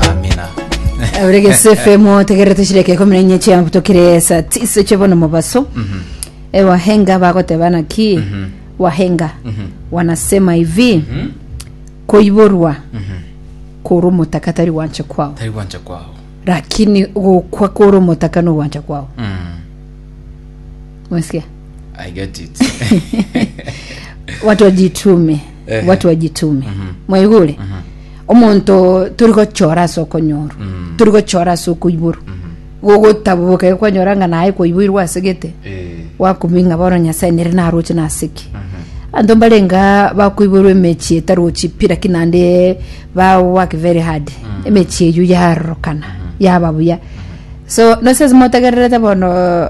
Amina. Ore gese FM otegere tushireke kumi na inye chiambu tokire saa tisa chebono mobaso e wahenga bagoteba naki wahenga wanasema hivi koiborwa kore omotaka tari gwancha kwao Tari gwancha kwao. lakini gokwa kore omotaka no gwancha kwao Mm. mwesikia I get it. watu wajitume Eh. watu wajitume mwaigure omonto tori gochora ase okonyorwa Mm. tori gochora ase okoiborwa gogotaboboka iga kwanyora ng'a naye kwaiboirwe ase gete Eh. wakumia ng'a bono nyasae nere naroche nasiki Mhm. anto mbarenga bakoiborwa emechi etarochi pi lakini naende ba work very hard emechi eyio yarorokana yaba buya so nose motegererete bono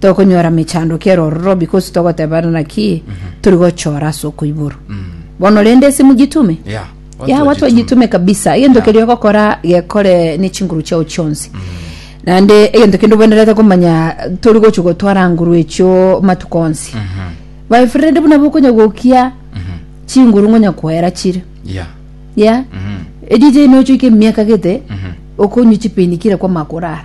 tokonyora mechandoki ere ororo because togoteberana naki turi gochora ase okoiboro bono rende ase mogitume Yeah. ya watu wajitume kabisa egento Yeah. keria ogokora gekore ne chinguru chiao chionsi naende egento kende obwenerete komanya tori gochi gotwara nguru echio matuko onsi my friend buna bokonya gokia chinguru ngonya koera chire Yeah. ya Mhm. edj nochoika emiaka gete Mhm. okonywa chipeni kire kwama korara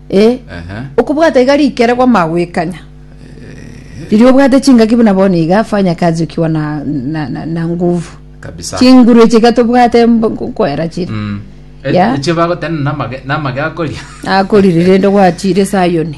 Eh, Ehe. okobwata iga rikere kwamagwekanya riria obwate chingaki buna bono iga fanya kazi ukiwa na, na, na, na nguvu kabisa chinguru echi iga tobwate mb- koera chiri Mm. E- Yeah. eche bagotena namage namage akoria akorire rende gwachire sayoni